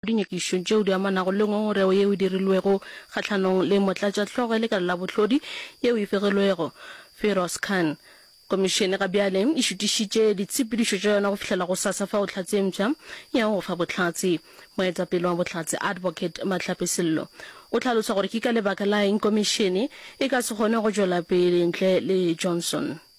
dinyakišong tšeo di amanago le ngongorego yeo e dirilwego kgahlanong le motlatšahlogo ya lekala la bohlodi yeo e fegilwego, Firoz Khan. Komišene ga bjale e šutišitše ditshepedišo tša yona go fihlela gosasa fao Tlhatse e mpsha e yago go fa bohlatse. Moetapele wa Bohlatse, Advocate Mahlape Sello, o hlalosa gore ke ka lebaka la eng Komišene e ka se kgone go tšwela pele ntle le Johnson.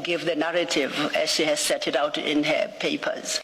Give the narrative as she has set it out in her papers.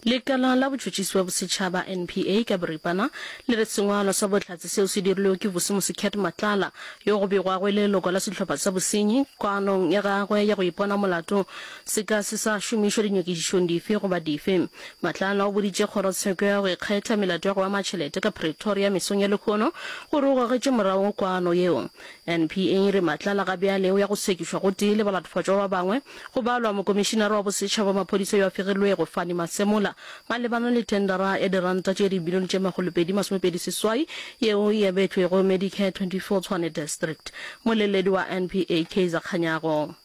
Lekala la Botšhotšhisi bja Bosetšhaba, NPA, ka boripana le re sengwalo sa bohlatse seo se dirilwego ke Vusumusi Cat Matlala, yo go begwago e le leloko la sehlopha sa bosenyi, koanong ya gagwe ya go ipona molato se ka se sa šomišwa dinyakišišong dife goba dife. Matlala o boditše Kgorotsheko ya go Ikgetha melato ya go ama tšhelete ka Pretoria mesong ya lehono gore o gogetše morago koano yeo NPA e re Matlala ga bjale o ya go sekišwa gotee le balatofhotšwa ba bangwe, go balwa mokomišinara wa bosetšhaba wa maphodisa yo a fegilwego, Fanny Masemola, malebana le thendara ya diranta tše dibilione tše makgolopedi masomepedi seswai yeo e abetšwego Medicare 24 Tshwane District. Moleledi wa NPA, Kaizer Kganyago.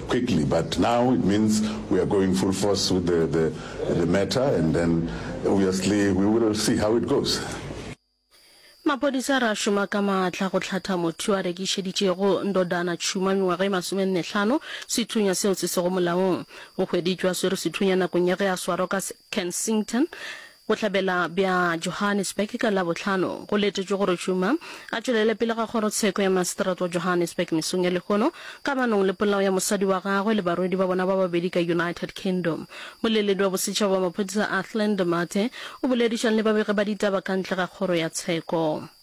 quickly but now it means we are going full force with the the the matter and then obviously we will see how it goes. Maphodisa a re a šoma ka maatla go hlatha motho yo a rekišeditšego Ndodana tšhuma mengwaga e masomenne-hlano sethunya seo se sego molaong. O hweditšwe a swere sethunya nakong ya ge a swarwa ka Kensington Bohlabela bja Johannesburg ka Labohlano go letetšwe gore Tshuma a tšwelele pele ga kgorotsheko ya maseterata wa Johannesburg mesong ya lehono kamanong le polao ya mosadi wa gagwe le barwedi ba bona ba babedi ka United Kingdom. Moleledi wa bosetšhaba wa maphodisa Athlin de Mathe o boledišang le babegi ba ditaba ka ntle ga kgoro ya tsheko.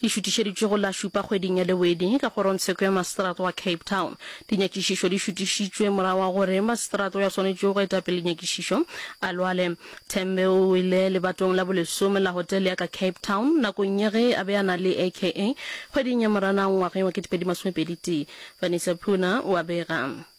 Di šutišeditšwe go la šupa kgweding ya Lewedi ka kgorongtsheko ya maseterata wa Cape Town. Dinyakišišo di šutišitšwe morago ga gore maseterata yo a swanetšego go eta pele nyakišišo a lwale. Tembe o wele lebatong la bolesome la hotele ya ka Cape Town nakong ya ge a be a na le AKA kgweding ya Moranang ngwageng wa ketepedi masomepedi tee. Vanessa Puna o a bega.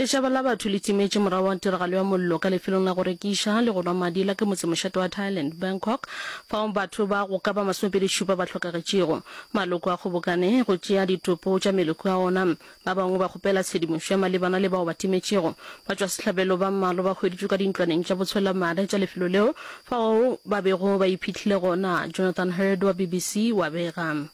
Lešaba la batho le timetše morago ga tiragalo ya mollo ka lefelong la go rekiša le go nwa madi la ke motsemošate wa Thailand, Bangkok, fao batho ba go ka ba masomepedi šupa ba hlokagetšego. Maloko a kgobokane go tšea ditopo tša meleko a ona. Ba bangwe ba kgopela tshedimošo ya malebana le bao ba timetšego. Batšwasehlabelo ba mmalwa ba hweditšwe ka dintlwaneng tša botshwelamare tša lefelo leo fao ba bego ba iphihlile gona, Jonathan Hurd wa BBC wa bega.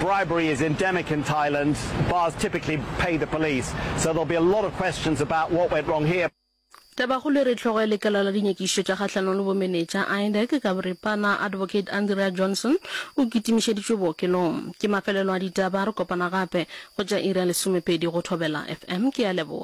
Bribery is endemic in Thailand, bars typically pay the police, so there'll be a lot of questions about what went wrong here. Tabakgolo e re hlogo ya lekala la dinyakišišo tša kgahlanong le bomenetša, IDAC, ka boripana, Advocate Andrea Johnson, o kitimišeditšwe bookelong. Ke mafelelo a ditaba, re kopana gape go tša iri ya lesomepedi go Thobela FM. Ke a leboga.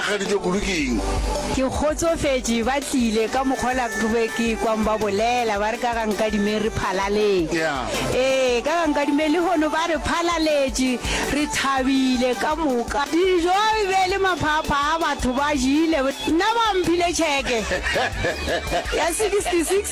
Rakgadijo kudu ke eng? Ke kgotsofetše ba tlile ka mokgwa ola ke be ke ekwang ba bolela ba re ka ga Nkadimeng re phalaleng. Yeah. Ee, ka ga Nkadimeng lehono ba re phalaletše, re thabile ka moka. Dijo e be e le maphaphaa, batho ba jele, nna ba mphile tšheke ya 66.